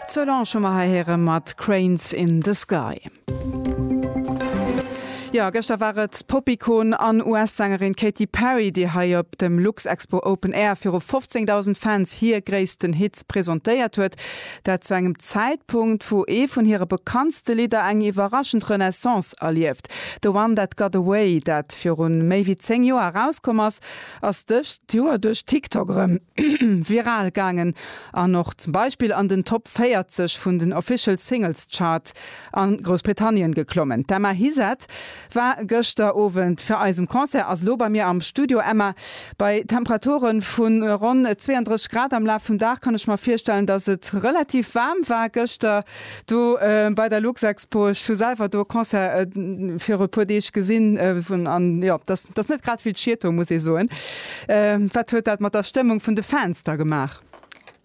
D'Solange hu mer hei héiere mat Cranes in the Sky. Jo, gëschter war et d'Pop-Ikon an US-Sängerin Katy Perry, déi hei op dem Luxexpo Open Air viru 15.000 Fans hir gréissten Hits presentéiert huet. Dat zu engem Zäitpunkt, wou ee vun hire bekanntste Lidder eng iwwerraschend Renaissance erlieft. The One That Got Away, dat virun méi wéi 10 Joer erauskomm ass, ass dëst Joer duerch TikTok erëm viral gaangen an och zum Beispill an den Top 40 vun den Official Singles Chart a Groussbritannien geklommen. D'Emma Hizet war gëschter Owend fir eis um Concert, ass elo bei mir am Studio. Emma, bei Temperature vu ronn 32 Grad am Laf vum Dag kann ech mer virstellen, dass et relativ waarm war gëschter. Do bei der Luxexpo, ech hu selwer do e Concert viru e puer Deeg gesinn, wou, an jo, dat ass, dat ass net grad vill Schieto, muss ee soen. Wat huet dat mat der Stëmmung vun de Fans da gemaach?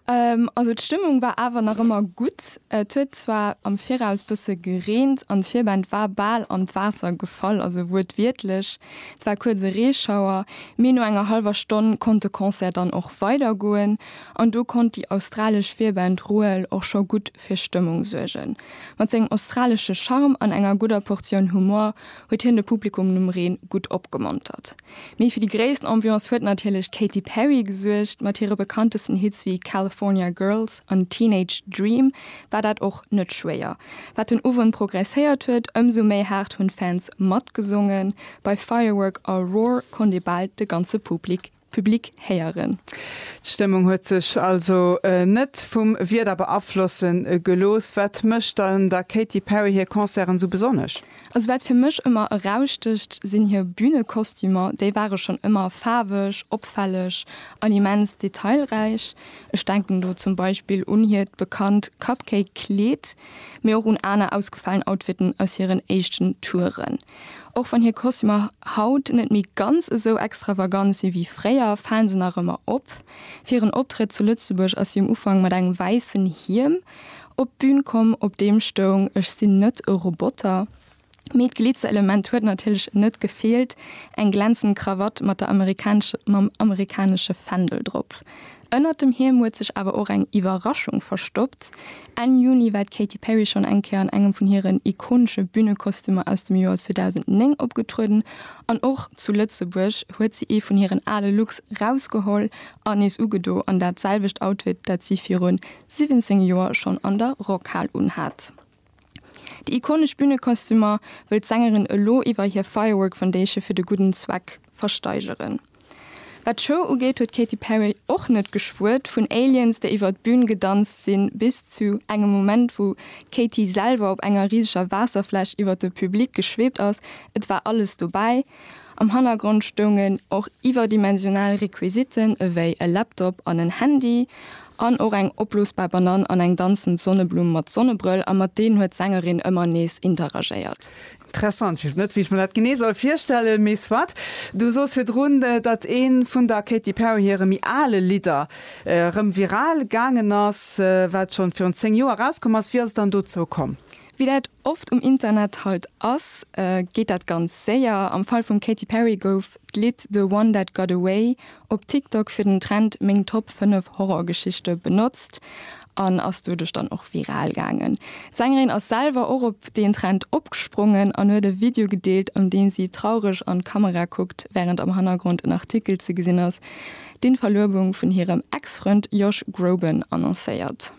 Also d'Stëmmung war awer nach ëmmer gutt. Et huet zwar am Viraus bësse gereent an d'Virband war bal an d'Waasser gefall, also wuertwiertlech. Et war kuerz e Reeschauer, mee no enger hallwer Stonn konnt de Concert dann och weidergoen. An do konnt déi australesch Virband Ruel och scho gutt fir Stëmmung suergen. Mat sengem australesche Charme an enger gudder Portioun Humor huet hien de Publikum nom Reen gutt opgemontert. Mee fir déi gréisst Ambiance huet natierlech d'Katy Perry gesuergt. Mat hire bekanntesten Hits wéi California Girls an Teenage Dream war dat och net schwéier. Wat den Owend progresséiert huet, ëmsou méi haart hunn d'Fans matgesongen. Bei Firework a Roar konnt ee bal de ganze Public Public héieren. D'Stëmmung huet sech also net vum Wieder beaflosse gelooss. Wat mécht dann der Katy Perry hir Concerten esou besonnesch? Also wat fir mech ëmmer erausstëcht, sinn hir Bünekostümer. Déi ware schonn ëmmer faarweg, opfälleg an immens detailräich. Ech denken do zum Beispill un hiert bekannt Cupcake-Kleed, mee och un aner ausgefalen Outfitten aus hiren éischten Touren. Och wann hir Kostümer haut net méi ganz esou extravagant si wéi fréier, fale se nach ëmmer op. Fir en Optrëtt zu Lëtzebuerg ass si um Ufank mat engem wäissen Hiem op d'Bün komm, op deem stoung Ech sinn net e Roboter. Mee d'Glitzerelement huet natierlech net gefeelt, eng glänzend Krawatt mat der amerikanesche, mam amerikanesche Fändel drop. Ënnert dem Hiem huet sech awer och eng Iwwerraschung verstoppt. Enn Juni war d'Katy Perry schonn eng Kéier an engem vun hiren ikonesche Bünekostümer aus dem Joer 2009 opgetrueden. An och zu Lëtzebuerg huet si ee vun hiren ale Looks rausgeholl an nees ugedo, an dat selwecht Outfit, dat si virun 17 Joer schonn an der Rockhal unhat. Déi ikonesch Bünekostümer wëll d'Sängerin elo iwwer hir Firework Foundation fir de gudden Zweck versteigeren. Wat d'Show ugeet, huet d'Katy Perry och net geschwuert vun Aliens, déi iwwer d'Bün gedanzt sinn, bis zu engem Moment, wou d'Katy selwer op enger riseger Waasserfläsch iwwer de Public geschwebt ass. Et war alles dobäi. Am Hannergrond stoungen och iwwerdimensional Requisiten ewéi e Laptop an en Handy an och eng opblosbar Banann an eng danzend Sonneblumm mat Sonnebrëll a mat deenen huet d'Sängerin ëmmer nees interagéiert. Interessant, ech weess net wéi ech mer dat genee soll virstellen, mee soit. Du soos virdrun, datt ee vun der Katy Perry hire méi ale Lidder erëm viral gaangen ass, wat schonn virun 10 Joer erauskomm ass. Wéi ass et dann dozou komm? Wéi dat oft um Internet halt ass, geet dat ganz séier. Am Fall vum Katy Perry gouf d'Lidd The One That Got Away op TikTok fir den Trend Meng Top 5 Horrorgeschichte benotzt an ass doduerch dann och viral gaangen. D'Sängerin ass selwer och op deen Trend opgesprongen an huet e Video gedeelt, an deem si traureg an d'Kamera kuckt, wärend am Hannergrond en Artikel ze gesinn ass, deen d'Verluebung vun hirem Ex-Frënd Josh Groban annoncéiert.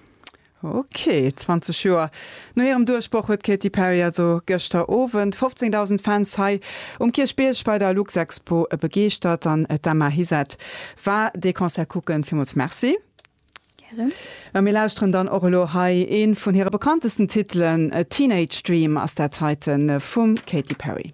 Ok, 20 Joer no hirem Duerchbroch huet d'Katy Perry also gëschter Owend 15.000 Fans hei um Kierchbierg bei der Luxexpo begeeschtert an d'Emma Hizet war dee Concert kucken. Villmools Merci. Gären. A mir lauschteren dann och elo hei ee vun hire bekanntesten Titelen, Teenage Dream ass dat heiten vum Katy Perry.